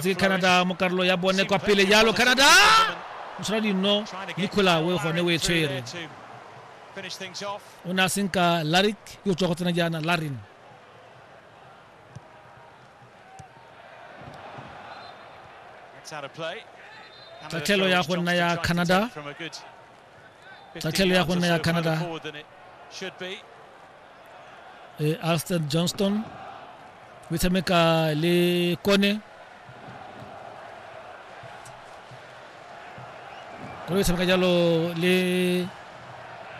tse canada mo karolo ya bone kwa pele jalo canada mosala dinno nicola o e gone o e tshwere o ne a senka laric yo o tswa go tsena jaana larin tatlhelo ya go nna ya canada tlhatlhelo ya go nna ya canada e alston johnston o tshameka le kone kone o tshameka jalo le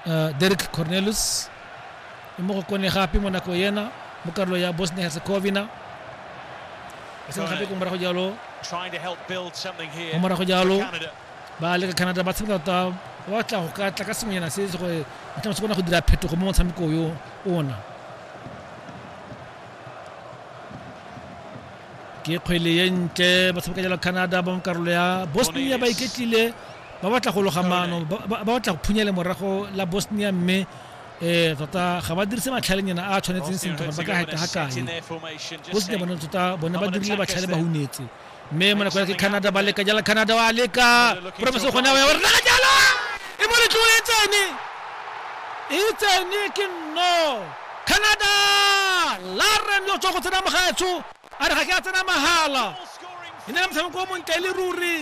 uh, derek cornelus e mo go kone gape mo nako yena mo karolo ya bosnia herzegovina e seng gape ko morago jalo mo morago jalo ba leka canada ba tshameka tota ba batla go ka tla ka sengwenyana se se gore ba tlametse kona go dira phetogo mo motshameko yo ona ke kgwele ye ntle ba tshameka jalo canada ba mo karolo ya bosnia ba iketlile ba batla go loga maano ba ba- ba batla go phunya le morago la bosnia mme um tota ga ba dirise matlhalenyana a a tshwanetseng sentle gore ba ka heta ga kae bosnia bone tota bone ba dirile batlhale ba hunetse mme mo nako ya ke canada ba leka jala canada wa leka promise gone wa re naka jalo e mo letlong e tsene e tsene ke no canada laren yo tswa go tsena mogaetsho a re ga ke a tsena mahala e ne le motshameko o montle e le ruri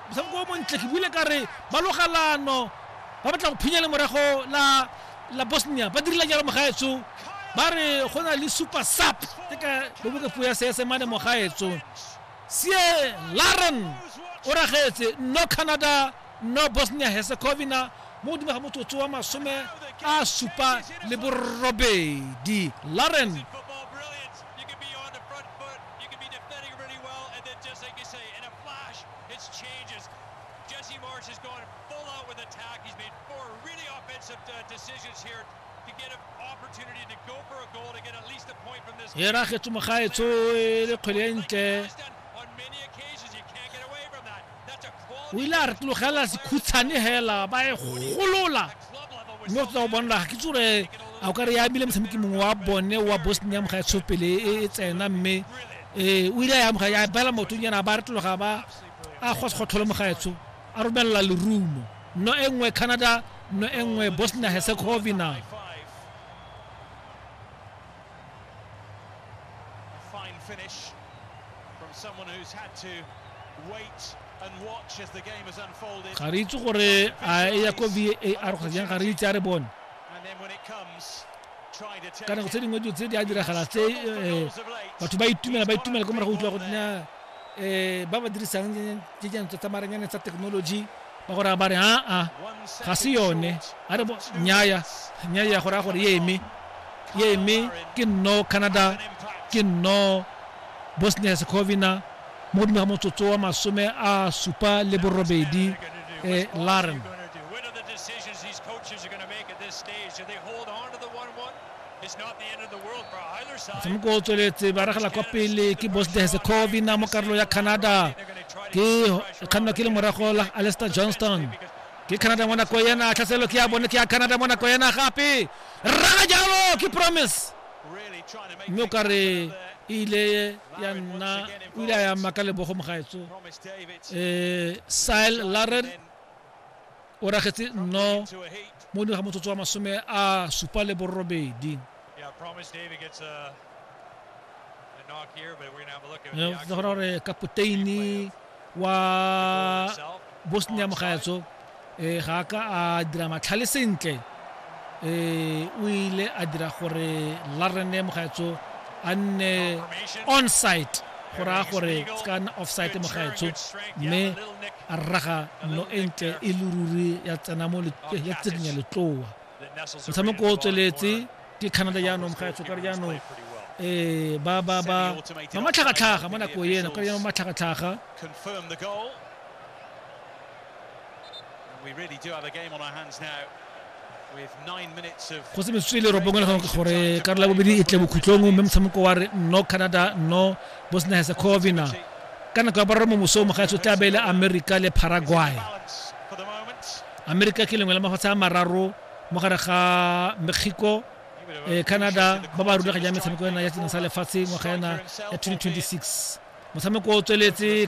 motshameko o montle ke buile ka re ba logalano ba batla go phinya le morago la la bosnia ba dirile jalo mogaetso ba re go na le super sap ke ka boboka puo ya seesemane mogaetso sie laren o ragetse no canada no bosnia herzegovina mo godimo ga motsotso wa masome a supa le borobedi laren Four really offensive uh, decisions here to get an opportunity to go for a goal to get at least a point from this. Era kgetso mogaetso e le kgwele ntle. On many occasions you can't get away from that. That's a quality. O ile a re tlogela sekhutshane hela ba e golola. Mme o tla go bonela ga ke tsore a o ka re ya bile motshameki mongwe wa bone wa Bosnia mogaetsho pele e, e tsena mme eh o ile ya moga ya bela motho nyana ba re tloga ba a go se go tlhola mogaetsho A romelela lerumo nno e nngwe Canada nno e nngwe Bosnia Herzegovina. finish from someone who's had to wait and watch as the game has unfolded. Ga re itse gore a e ya ko VAR kgotsa jang ga re itse a re bone. And then when it comes ka nako tse dingwe dilo tse di a diragala tse eh, batho ba itumela ba itumela ko morago utlwa go tna eh, ba ba dirisang dijana tsa maranyane tsa technology ba gore ba re aa ga se yone a re nyaya nyaya gore a gore ye eme ye eme ke nno canada ke nno bosnia herzegovina mo godimo ga motsotso wa masome a supa le borobedi eh, laren motshameko o tsweletse ba ragela kwa pele ke bosnia herzegovina mo karolo ya canada ke kgannwa ke le morago la alester johnston ke canada mo nako ena tlhaselo ke ya bone ke ya canada mo nako ena gape rraga jalo ke promise mme o ka re e ile ya nna o ile a ya maka lebogo mogaetso um eh, sile laren o ragetse nno mo ding ga motsotso wa masome a supa le borobedi tla gona gore kapoteini wa bosnia mogaetso um ga ka a dira matlhale sentle eh o ile a dira gore larene mogaetso a nne onsite go raya gore se ka nna offsite mogaetsho mme a rraga no e ntle e le ruri ya tsena mo ya tseding ya letloa motshameko o tsweletse ke canada jaanong mogaetsho kare jaanong um ba ba ba ba matlhagatlhaga mo nako ena kare jaanong matlhagatlhaga go se metsotso e le robongwe le gangwe ke gore ka re la bobedi e tle bokhutlong mme motshameko wa re no canada no bosnia herzegovina ka nako ya boraro mo mosong mogaetsi o tla beele america le paraguay america ke lengwe la mafatshe a mararo mo gare ga mexico eh, canada ba ba rulaganya metshameko ena ya sena sa lefatshe ngwaga ena ya 2026 motshameko o tsweletse